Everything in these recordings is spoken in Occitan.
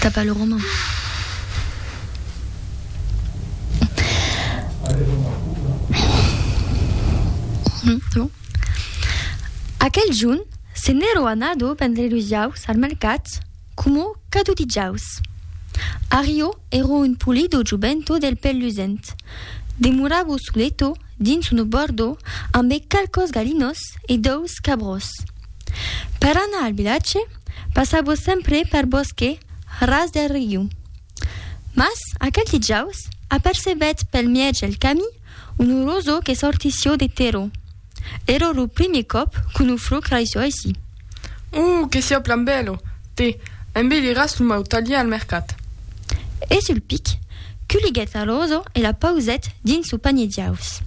Tapa lo roman. Aquel junh se n'èro anado vendre los jaus al mercat coma cadó de jaus. Ario èro un polido jovento del pèl lusent. Demoravo soleto dins un obòrdo ambe qualques galinòs e dòus cabròs. Per anar al vilatge, Passavos sempre per bòsque ras del riu. Mas, aquel dijaus, apercebètz pel mièg del camí un roso que sortissió de terror. Èra lo primier còp qu'un fruc raissó aicí. Oh, que siá plan bèlo! Te, embeliràs lo mau talhièr al mercat. E sul pic, culiguèt la roso e la pausèt dins lo panier diaus.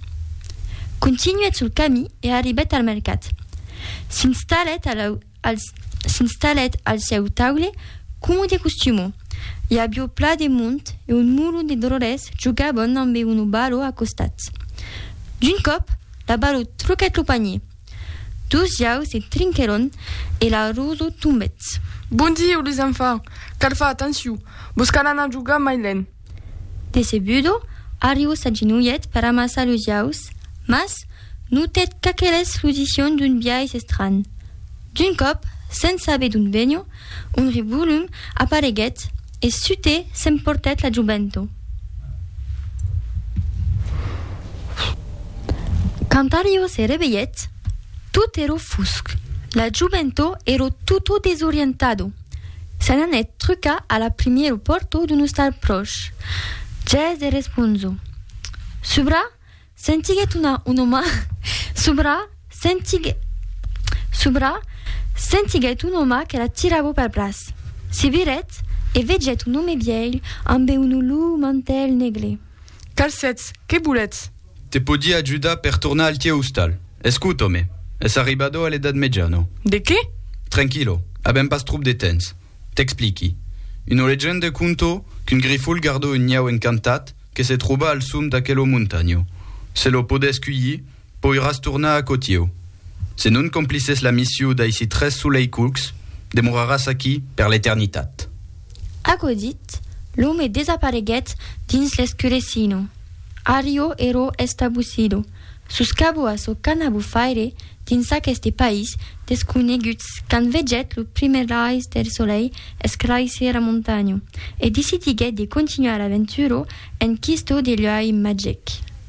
Continuèt sul camí e arribèt al mercat. S'installèt a la. Al s'installèt al sieu taule, coma de costuma. I avió plat de mond e un mulon de dròlles jogavan ambe una balò a costat. D'un còp, la balò truquèt lo panier. Dos jaus se trinquèron e la rosa tombèt. Bon dieu, les enfants! Cal far atencion, vos cal anar jogar mai lent. Decebudo, Arriu s'agenolhet per amassar los jaus, mas notèt qu'aqueles fludission d'un biais estranh. D'un còp, sens saber d'ont venho, un revolum apareguèt e sutè s'emportèt la jovento. Quand Arriu se revelhèt, tot èro fusc. La jovento èro tutto desorientado. Se n'anèt trucar a la primièr o pòrto d'un ostal pròche. Ges de responso. Subra, sentiguèt una un òma subra, sentiguè subra, sentiguèt un òma que la tirava pel braç. Se virèt e vegèt un òme vièlh ambe un olor mantèl negre. Calcètz, qué voletz? Te podí ajudar per tornar al tieu ostal. Escouta, òme, es arribado a l'edat meja, no? De qué? Tranquilo, avèm pas tròp de tens. T'expliqui. Una legende conto qu'un grifol gardó un niau encantat que se tròba al som d'aquelo montanho. Se lo podés cuilhir, Poiràs tornar a Cotieu. Se non complisses la missiu d'aici tres soleicucs, demoraràs aquí per l'eternitat. Aquò dit, l'òme desapareguèt dins l'escurecino. Arrio ero estabusido, sus cabo a çò qu'an a bufaire dins aqueste país desconegut quand vegèt lo primièr rais del solei escraisir a montanho e decidiguèt de continuar l'aventura en quisto de luei magic.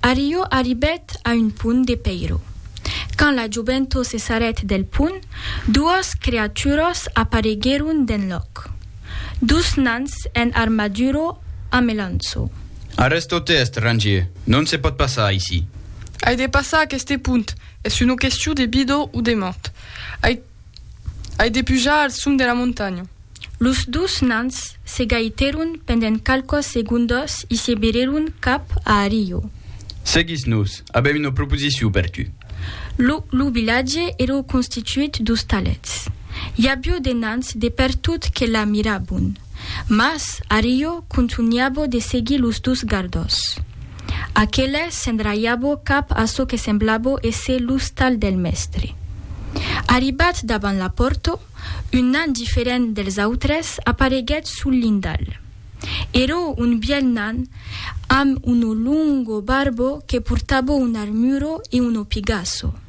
Arriò arribèt a un pont de pèiro. Quand la joventó se sarèt del pont, duòs creaturos apareguèron d'enlòc. Dus nans en armaduro a melanço. Arrèsto te estrangier, non se pòt passar aicí. Ai de passar aqueste pont, es una question de vida o de mòrt. Ai. Ai de pujar al sum de la montanha. Los dus nans se gaitèron pendent qualquas segondas e se virèron cap a Ario. Seguis-nos, avèm una proposicion per tu. Lo lo vilatge èra constituit d'ostalets. I avió de nans de pertot que la mirabon. Mas Ario contunhabo de seguir los dus gardós. Aqueles s'endraiabo cap a çò que semblabo èsser l'ostal del mèstre. Arribat davant la pòrto, un nan diferent dels autres apareguèt sul lindal. Ero un bièlh nan amb uno longo barbo que portabo un armuro e uno pigasso.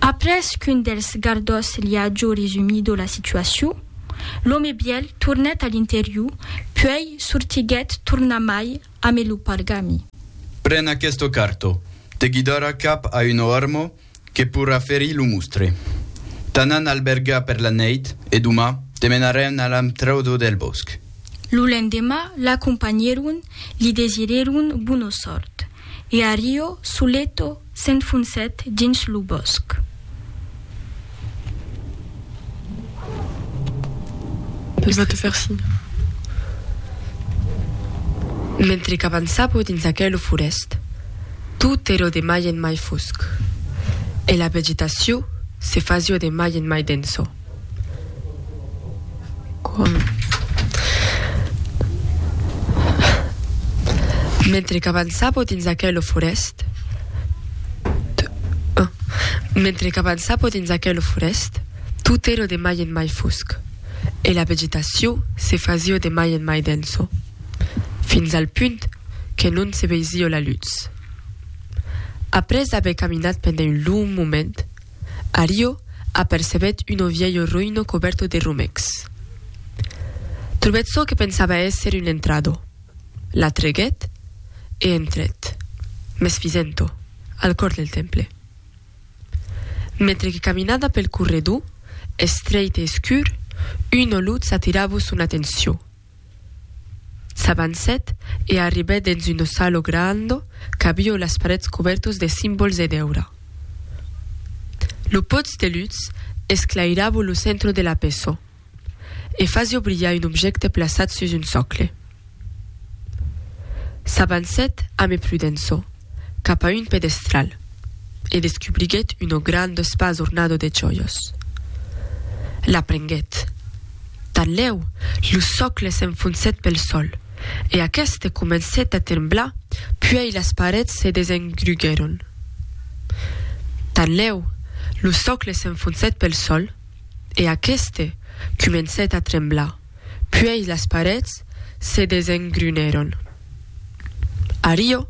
Après qu'un dels gardòs li a jo resumido la situacion, l'òme bièl tornèt a l'interior, puèi sortiguèt tornamai amé lo pargami. Pren aqueste carto, te guidarà cap a un òrmo que pourrà ferir lo mostre. T'anan albergar per la nèit e domà te menarèn a l'amtraudo del bòsc. Lo lendemà l'acompanhèron, li desirèron bona sòrt. e Ario Suleto s'enfonsèt dins lo bòsc. Ella va te far signe. Mentre qu'avançapo dins aquelo forèst, tot èro de mai en mai fosc e la vegetacion se fasio de mai en mai denso. Mentre qu'avançava dins aquela forèst, tot èra de mai en mai fosc e la vegetacion se fasiá de mai en mai densa, fins al punt que non se veisiá la lutz. Après aver caminat pendent un long moment, Ario apercebèt uno vielho roïno cobèrto de romècs. Trobèt çò que pensava èsser un entrado, l'atreguèt e entrèt, mès fisent-o, al còr del temple. Mentre que caminada pel corredor, estreit e escur, una lutz atiravo son atencion. S'avancèt e arribèt dens un ossalo grando qu'avió las parets cobèrtos de simbols e d'èura. Lo pòts de lutz esclairavo lo centro de la peço e fasió brilhar un objècte plaçat sus un socle. S'avancèt ame prudenço. cap a un pedestral e descubriguèt un grand espas ornado de jòias. La prenguèt. Tanlèu, lo sòcle s'enfonsèt pel sòl e aqueste comencèt a tremblar puèi las parets se desengruguèron. Tanlèu, lo sòcle s'enfonsèt pel sòl e aqueste comencèt a tremblar puèi las parets se desengrunèron. Ario,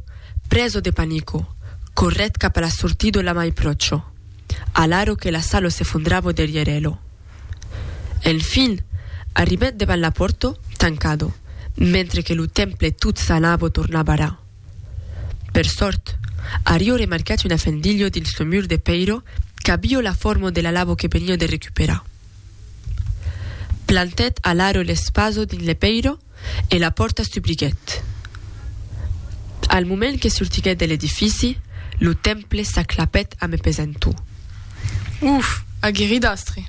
preso de panico, corrèt cap a la sortido la mai pròcho, alaro que la salo s'efondravo derrièr elo. Enfin, arribèt devant la pòrto, tancado, mentre que lo temple tot s'anavo tornar barrar. Per sòrt, Ario remarquèt una fendilho dins lo mur de pèiro qu'avio la formo de l'alavo que venia de recuperar. Plantèt alaro l'espaso dins le pèiro, e la pòrta s'dubliguèt. Al moment que sortiguèt de l'edifici, lo temple s'aclapèt a me pesentor. Uf! Aguerrit astre!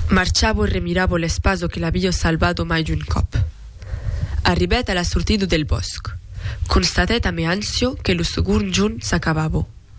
Marchavo e remiravo l'espazo que l'avio salvado mai d'un còp. Arribèt a la sortida del bòsc, constatèt a me ancio que lo segond jorn s'acabavo.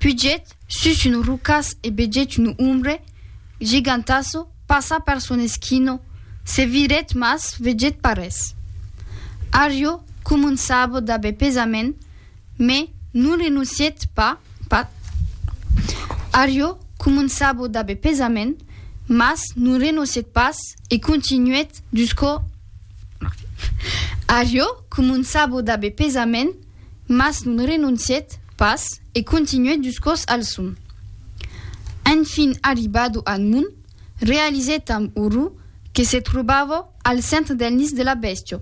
Pugèt sus un rocàs e vegèt un ombre gigantàso passar per son esquina, se virèt mas vegèt pas res. Arrio començava d'aver pesament, me non renoncièt pas, pas. Arrio començava d'aver pesament, mas non renoncièt pas e continuèt jusqu'au. Arrio començava d'aver pesament, mas non renoncièt pas e continuèt dus còps al son. Enfin arribado al mond, realizèt amb orror que se trobava al centre del nis de la bèstia.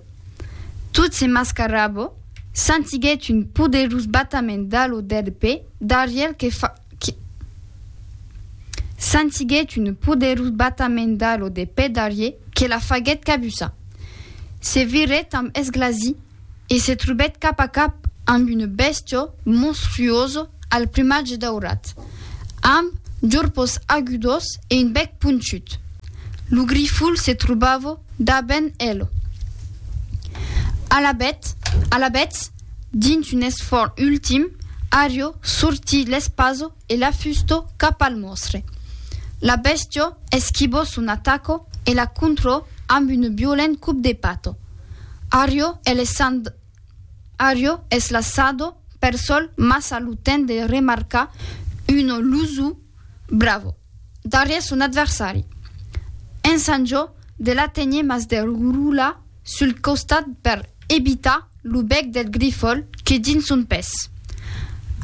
Tot se mascarava, sentiguèt un poderós batament d'alo del pè darrièr que fa, que, sentiguèt un poderós batament d'alo de pè darrièr que la faguèt cabussar. Se virèt amb esglasi e se trobèt cap a cap amb una bèstia monstruosa al plumatge daurat, amb jorpos agudos e un bèc ponchut. Lo grifol se trobava dabent el. Alabet, alabetz, dins un esfòrt ultim, Ario sortí l'espasa E la fusto cap al mòstre. La bèstio esquibò son ataco e la contrò amb un violent cop de pato. Ario es laissand Ario es lassado per sol mas a lo temps de remarcar un lusu bravo darrièr son adversari. Ensanjò de la tenir mas de roula sul costat per ebitar lo bèc del grifol que dins son pes.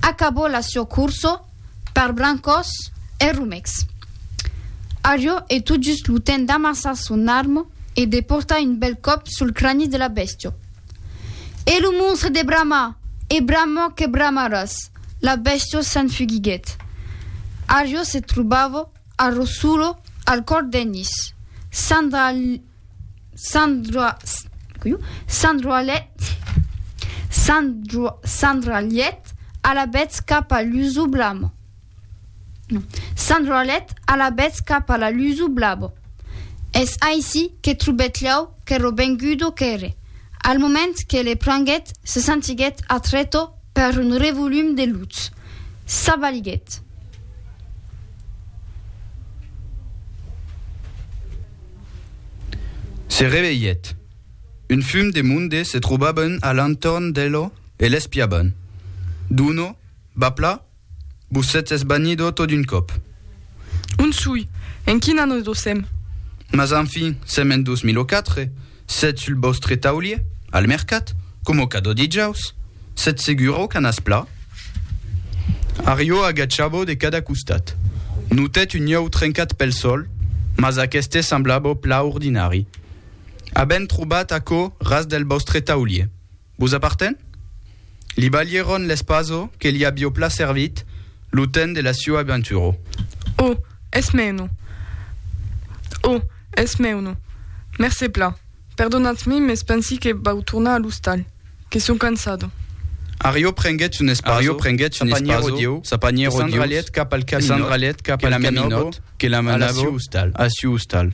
Acabó la sua corso per brancòs e romecs. Ario e tot just lo temps d'amassar son arma e de portar un bèl còp sul crani de la bèstia. E lo monstre de bramar e bramar que bramaràs! La bèstia s'enfugiguèt. Ario se trobava A Rossulo, al còr d'Ennis, Sandra Sandra coiu Sandra Llet Sandra Sandra Llet a la betz cap a l'usu blamo non Sandra Llet a la betz cap a la l'usu blabo. Es aicí que trobèt lh'au qu'èro vengudo qu'ère. Al moment que le prenguèt, se sentiguèt atreto Per un revolum de lutz. Ça valiguèt. Se revelhèt. Un fum de monde se trobavan a l'entorn d'elo e l'espiavan. D'uno, Bapla? Vos sètz esbanido tot d'un còp. On soi? En quin an nos dosèm? Mas enfin, sèm en 2004, sètz sul vòstre taulier, al mercat, coma o cadò dijaus. Sètz segura o canàs pla? Ario agachava de cada costat. Notèt un iòu trencat pel sòl, mas aqueste semblava pla ordinari. Avèm trobat aquò ras del vòstre taulier. Vos aparten? Li balhèron l'espaso que li avió pla servit lo temps de la sua aventuro. O, es mèuno! O, es mèuno! Mercé pla. Perdonatz-mi, mes pensi que vau tornar a l'ostal, que sò cansado. Arió prenguèt son espaso, sa panièro dieu, e s'endralhèt cap al caminòt que la menòbo a la siu ostal.